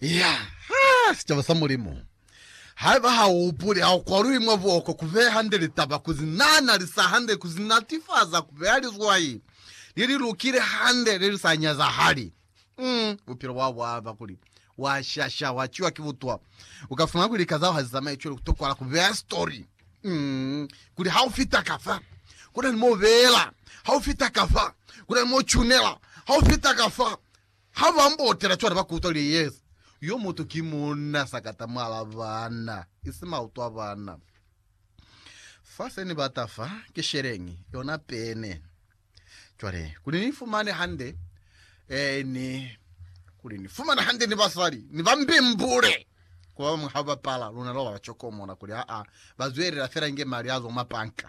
Ya, ha, sicaba sa Mulimu. Haiba ha u hupuli, ha u kwaluhi mwa buoko ku beya hande litaba, ku zi nana, li sa hande, ku zi natifaza, ku beya lizwai le li lukile hande, le li sa nyazahali, mm, bupilo bwao bwa ba kuli wa shasha, wa ciwa ki butwa. U ka fumana kuli lika zao ha zi zamaye cwale, ku tokwala ku beya sitori, mm, kuli ha u fita ka fa, ku na ni mo u beela, ha u fita ka fa, ku na ni mo u cunela, ha u fita ka fa, Ha ba mbotela cwale ba kutwa li yeza. Yo mutu ki munna sakata mwal'a bana, isi mautu a bana. Fa se ni bata fa, ki sheleñi, yona pene. Cwale, kuli ni fumane hande, eh, ni, kuli ni fumane hande ni basali, ni ba mbimbule. Ku ba bañwi ha ba pala, luna lwa ba ba cokomola, kuli, Aa, ba zwelela fela inge mali a zwa mwa panka.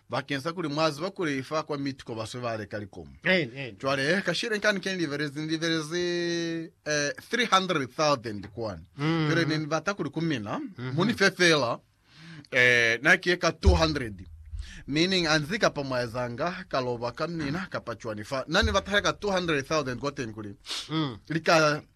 Bakeng sa kuli mwa ziba kuli fa kwa miti ko baswe ba leka likomu. Cwale, kashile kani ke ni libelezi, ni libelezi eh, 300,000 kwani. Mm. Cwale ne ni bata kuli ku mina, mm-hmm. mu ni fe fela, eh, na ki ka 200. Meaning, anzi kapa mwa ezanga ka loba ka mina kapa cwani fa. Na ni bata ka 200,000 kwa teni kuli, mm. li ka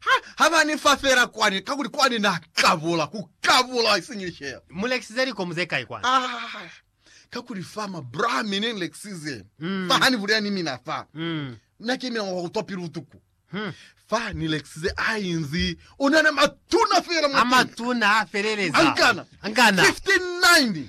Ha, ha ba ni fa fela kwani, kakuli kwani Na kabula, ku kabula, isiñi lishela. Mu lekisize likomu ze kai kwani? Ah, kakuli fa ma bra mi ne ni lekisize Mm. fa, ha ni bulela ni mina fa, Mm. Na ki mina wa ku twa pilu butuku. Hmm. Fa ni lekisize a inzi onana matuna fela A mwa tuna. matuna a feleleza. Angana. Angana. 59.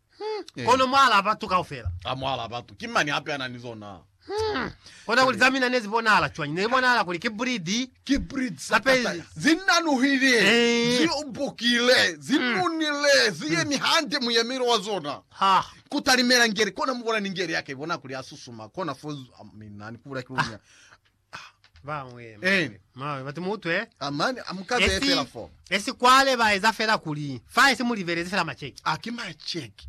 Hmm. Kono mwaalaa batu kaufela. Ha mwaalaa batu, ki mani hape ana ni zona? Hmm. Kona kuli za mina ne zi bonahala cwañi? Ne li bonahala kuli ki bridi. Ki bridi za kataya. Zi nanuhile, eh. zi ubukile, zi hmm. nunile, zi yemi hmm. hande muyemelo wa zona. Ha. Ku talimela ngeli, kona mu bona ni ngeli ya ka, i bona kuli ya susuma, kona fo, mina ni ku bula ki lunya. Bañwi Eh. mane bati mutwe Ah, mane a mu ka beye esi fela fo. esi kwale ba eza fela kuli fa esi mu libelezi fela macheki. Ah, ki macheki.